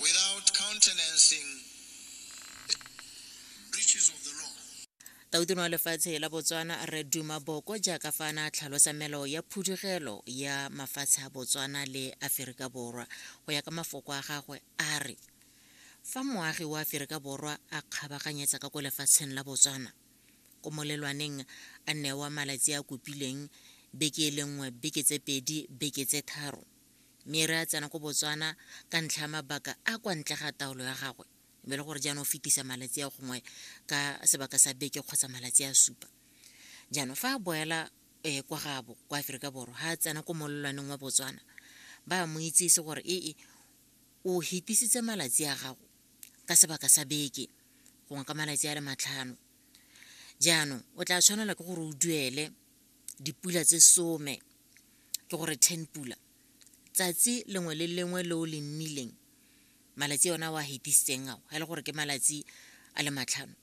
without countenancing breaches of the law. Tautona wa lefatshe la Botswana Rre Duma Boko jaaka fa ana tlhalosa melao ya phudugelo ya mafatshe a Botswana le Aferika Borwa go ya ka mafoko a gagwe a re fa moagi wa Aferika Borwa a kgabaganyetsa ka ko lefatsheng la Botswana ko molelwaneng a newa malatsi a kopileng beke e le nngwe beke tse pedi beke tse tharo mme re a tsena ko botswana ka ntlha ya mabaka a kwa ntle ga taolo ya gagwe mme le gore jaanong o fetisa malatsi a gongwe ka sebaka sa beke kgotsa malatsi a supa jaanong fa a boela um kwa gabo kwa aforika borwa ga a tsena ko molelwaneng wa botswana ba mo itsese gore ee o hetisitse malatsi a gago ka sebaka sa beke gongwe ka malatsi a le matlhano jaanong o tla tshwanela ke gore o duele dipula tse some ke gore ten pula tsatsi lengwe le lengwe le o le nnileng malatsi ona wa hetisitseng ao ga e le gore ke malatsi a le matlhano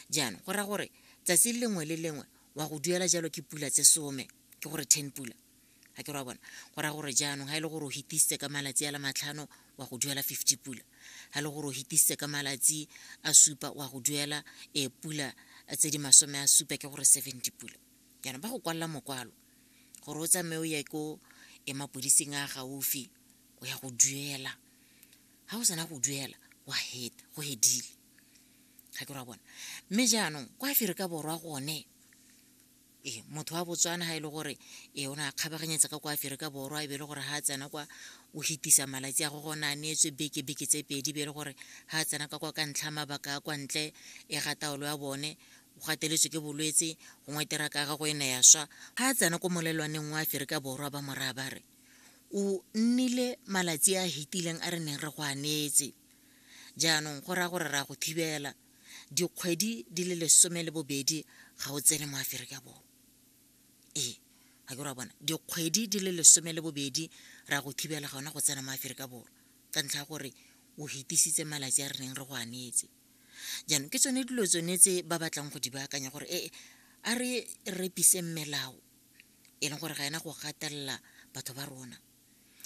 jaanong go raya gore tsatsi lengwe le lengwe wa go duela jalo ke pula tse some ke gore ten pula ga ke ra bona go raya gore jaanong ga e le gore o hetisitse ka malatsi a le matlhano wa go duela fifty pula ga le gore o hitisitse ka malatsi a supa wa go duela e pula tse di masome a supa ke gore seventy pula jaanong ba go kwalela mokwalo gore o tsamaye o ye ko e mapodising a gaufi o ya go duela ga o sena go duela wa het go hedile ga ke ra bona mme jaanong kwa aferika borwa gone ee motho wa botswana ga e le gore ee o ne a kgabaganyetsa ka kwa aferika borwa e be e le gore ga a tsena kwa o fetisa malatsi a go gone a neetswe beke beke tse pedi be e le gore ga a tsena ka kwa ka ntlha mabaka a kwa ntle e ga taolo ya bone o gateletswe ke bolwetse gongwe teraka ya gago e ne ya swa ga a tsena ko molelwaneng wa aferika borwa ba moraya ba re o nnile malatsi a hetileng a re neng re go a neetse jaanong go raya gore ra go thibela dikgwedi di le lesome le bobedi ga o tsene mo aferika borwa ee ga ke ra bona dikgwedi di le lesome le bobedi ra go thibela ga ona go tsena mo aferika borwa ka ntlha ya gore o hetisitse malatsi a re neng re go anetse jaanong ke tsone dilo tsone tse ba batlang go di baakanya gore ee a re repise melao e leng gore ga ena go gatelela batho ba rona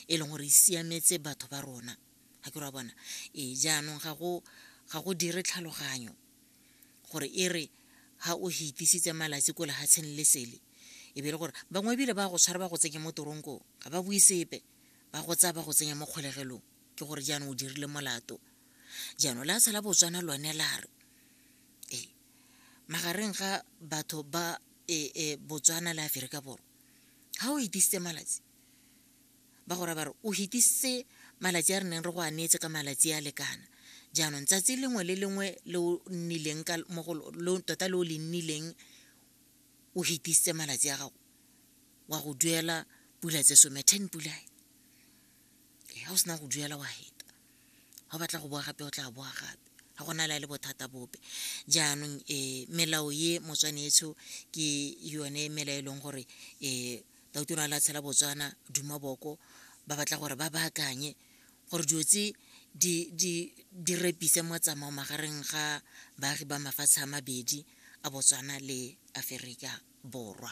e leng gore e siametse batho ba rona ga ke ra bona ee jaanong ga go dire tlhaloganyo gore e re ga o hitisitse malatsi ko lehatsheng le sele e be e le gore bangwe ebile ba go tshwara ba go tsenye mo toronkong ga ba bue sepe ba go tsaya ba go tsenya mo kgolegelong ke gore jaanong o dirile molato jaanong la tshala botswana lone la re ee magareng ga batho ba e, e botswana le aferika borwa ga o itisitse malatsi ba go raba re o hitisitse malatsi a re neng re go a neetse ka malatsi a lekana jaanong tsatsi lengwe le lengwe le o nnileng ka mo go tota le o le nnileng o hitisitse malatsi a gago wa go duela pula tse some ten pula e ga o sena go duela wa heta ga o batla go boa gape o tla boa gape ga go na le a le bothata bope jaanong um melao ye motswanetsho ke yone mela e leng gore um doctor a latshela botswana duma boko ba batla gore ba baakanye gore dilo tse di repise motsamao magareng ga baagi ba mafatshe a mabedi a botswana le aferika borwa